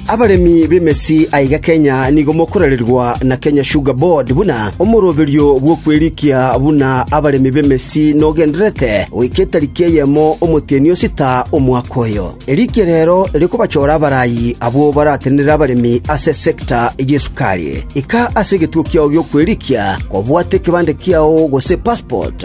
Abaremi b'emesi aiga Kenya nigo mokorererwa na Kenya Sugar Board buna omoroberio bw'okwerikia buna abaremi b'emesi nogendererete goika etariki eyemo omotienyi o sita omwaka oyo. Erikia rero rikobachora abarayi abwo baratenenere abaremi ase esecta y'esukari. Ika ase egetuo kiao gi'okwerikia kobwate ekebande kiao gose passport.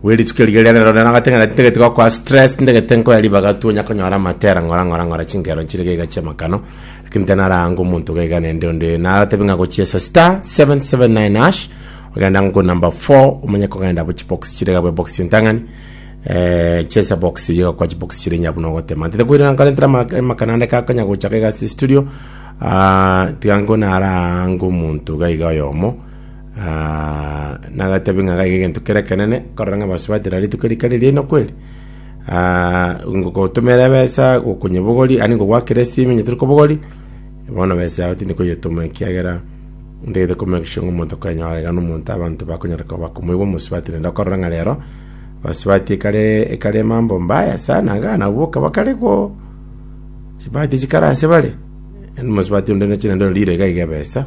Bwe rituko erio riria rero nero nagateng'ena ati, Ntagete gokora stress, ntagete nkoye ribaga tu, onya konyora amatera ng'ora ng'ora ng'ora chinkero nchire gaiga chi'amakano, lakini tanarange omonto gaiga nende onde. Naratebe ng'a gochiesa star 779 hash, ogenda ng'o number 4, omanye kogenda bo chibox chire gabwe box entang'ani, eh, chesa box eye gakwa chibox chire onye buna ogotema. Ntete koirana nkore ntera ama- amakano ande kakonya gocha gaiga ase studio, ah, tiga nko narange omonto gaiga oyomo, Ah, nagatebi ng'a gaiga egento kere ekenene, korora ng'a basobatera rituko rika riria inwe kweri. Ah, ngogotomera ebesa gokonyebogori, ani ngogwakera esimi onye tori kobogori, bono besa yao tindi koyetoma ekiagera ntagete ko make sure ng'a omonto kanyora iga nomonto abanto bakonyara koba bakomoigwa omosabatere. Enda okorora ng'a rero, basubati ekare ekare mambo mbaya sana iga nabo okaba kare go chibati chikara ase bare, yaani omosubati onde nochire nere orire iga iga ebesa.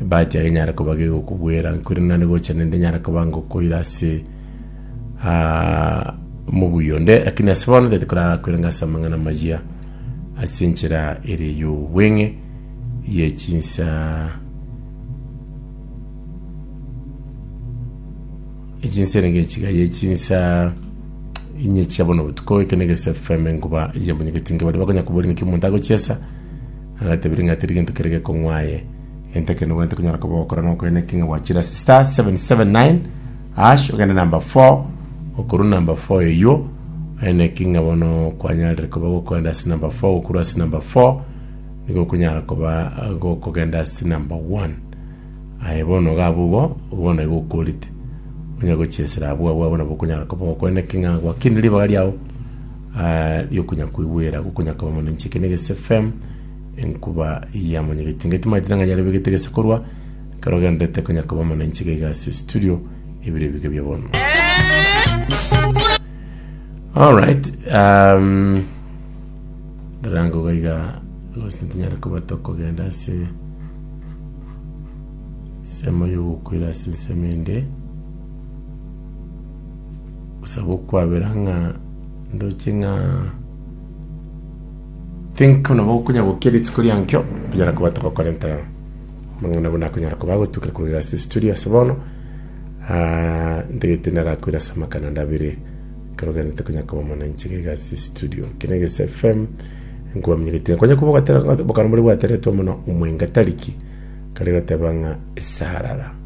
Ebahati yaye enyare koba gegokobwera nkwire nande gocha nende enyare koba ngokoira ase ah, omobuya onde lakini ase bono tete korara koira ngase amang'ana amaya ase enchera ere y'obweng'e ye chinsa echinsa ere ngechiga ye chinsa inye chia bono botuko ekene gese fm ngoba yabonyegeti nge bari bakonya kuburira ki omonto agochiesa Agatebia ng'a tiri gento kere gekong'wa aye. Gento ekero nobwenerete konyora koba ogokora nokoria naki ng'a gwachira *779# ogende number 4 okorwa number 4 eywo ore naki ng'a bono kwanyarire koba gokogenda ase number 4 gokorwa ase number 4 nigo okonyara koba gokogenda ase number 1 aye bono iga abwo igo bono igo okorete onya gochia esira abwo abwo nabo okonyara koba ogokora naki ng'a gwakinire ribaga riago. Aria okonyakoigwera gokonyakaba mono inche ekero negese fem enkuba yamonyegetie inga timaete ng'a yarebegete gese korwa ekero ogenderete konyakaba mono inche gaiga ase studio ebiro ebiga bia bono alright um, ndarango gaiga gose ntonyare koba tokogenda ase ensemo yogokwera ase ensemo ende Gose gokwabera ng'a ndoche ng'a think buna bokonya gokia rituko riankio tonyara koba togokorenta amang'ana buna akonyara koba agotuka korwa ase studio ase bono Ah, ntagete narakwira ase amakana ndabere karogani tokonya koba mwananchi gaiga ase studio kene gese fm nkwamnyegete konya kuba gatera bokana bore bwateretwa mono omwenga tariki kare gateba ng'a esarara